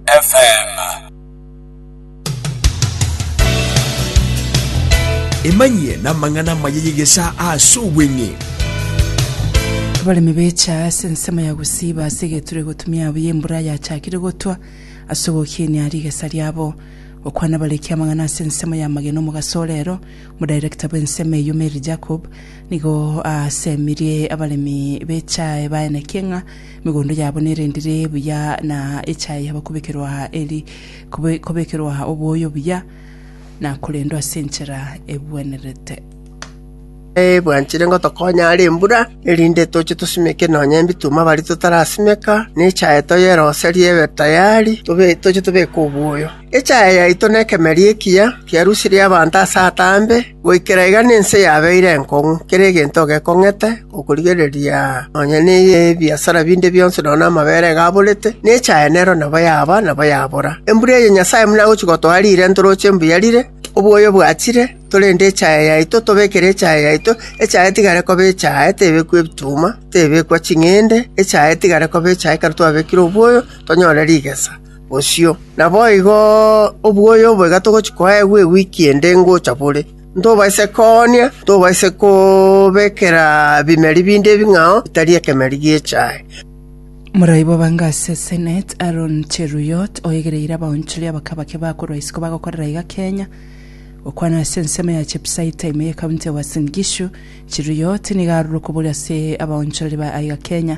FM. Emanyie namang'ana amaya y'egesaa ase obweng'e. Abaremi becha ase ensemo ya gosiiba ase egeturwa egotumia buya embura yachakire gotwa ase ogokinia rigesa riabo. Gokwana bareki amang'ana ase ensemo y'amagena omogaso ore ero, omodirector bw'ensemo eyio Mary Jacob nigo aasemirie abaremi bechae baeneke ng'a Emegondo yabo nerendire buya na echaye yabo kobekerwa eri kobe- kobekerwa oboyo buya na korendwa ase enchera egwenerete. Eh, bwanchire ngotokonya are embura, erinde toche tosimeke nonya embituma baria totarasimeka, ne echaye toyeroserie ebe tayari, tobe- toche tobeke oboyo. Echaya yaito nekemeri ekiya kiarusirie abanto ase ataambe, goikera iga nense yabeire enkong'u, kera egento gekong'ete, okorigereria nonya nebiasara binde bionsi nonya namabere iga aborete, na echaya nero nabo yaba, nabo yabora. Embura eye Nyasae buna agochia gotoa riire ntoroche mbuya rire, obwoyo bwachire, torende echaya yaito, tobekere echaya yaito, echaya etigare koba echaya, tebekwa ebituma, tebekwa ching'ende, echaya etigare koba echaya ekero twabekire obwoyo, tonyore rigesa. bosio. Naboigo obwoya obo iga togochia koegwa ewiki ende ngocha bore, ntobaise koonia, ntobaise kobekera bimeri binde ebing'ao bitari ekemeri gi'echae. Moroibwa bange ase Senate, Aaron Cheruiyot, oegereire abaonchori abake abake bakorwa isiko bagokorera iga Kenya. Gokwana ase ensemo ya Chiefs high taa ime ye county ya Uasin Gishu, Cheruiyot nigo arure okoboria ase abaonchorori ba aiga Kenya,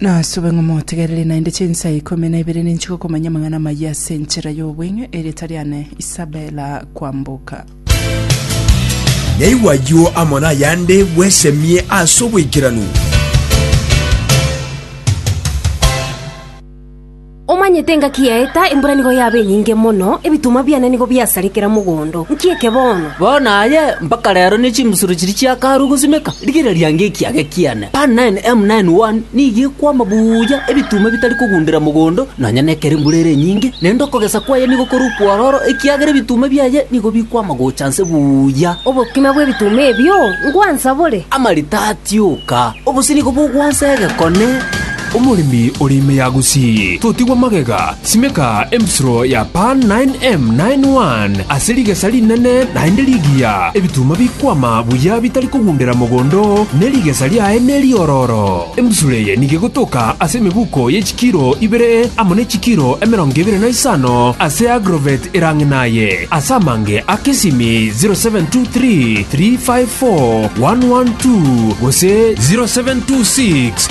Nasube ng'a motegereri naende chinsa ikomi na ibere ninche gokomanya amang'ana amaya ase enchera y'obweng'e, erieta riane Isabela kwamboka. Naigwe ayio amo nayande bwesemie ase oboikeranu. Omanyete engaki yaeta, embura nigo yaba enyinge mono, ebitunwa biane nigo biasare kera mogondo. Nki eke bono? Bono aye mpaka reero ne chimbusuro chiria chiakarwa gosimeka, rigireria nge ekiage kiane. Pan 9, M 9, 1, nigo ekwama buya, ebitunwa bitari kogundera mogondo, nonya nekero embura ere enyinge, naende okogesa kwaye nigo kore okwororo, ekiagera ebitunwa biaye nigo bikwama gocha nse buya. Obokima bw'ebitunwa ebio ngwansa bore? Amarita atioka, obosio nigo bogwansa egekone. Omoremi ore ime ya Gusii, totigwa magega, simeka embisuro ya Pan 9M 9 One ase rigesa rinene naende rigiya, ebituma bikwama buya bitari kogundera mogondo, ne rigesa riaye neriororo. Embisuro eye nigo egotoka ase emebuko ye chikiro ibere amo ne chikiro emerongo ebere na isano ase agrovet erang'e naye, ase amange a kesimi 0723 354 112 gose 0726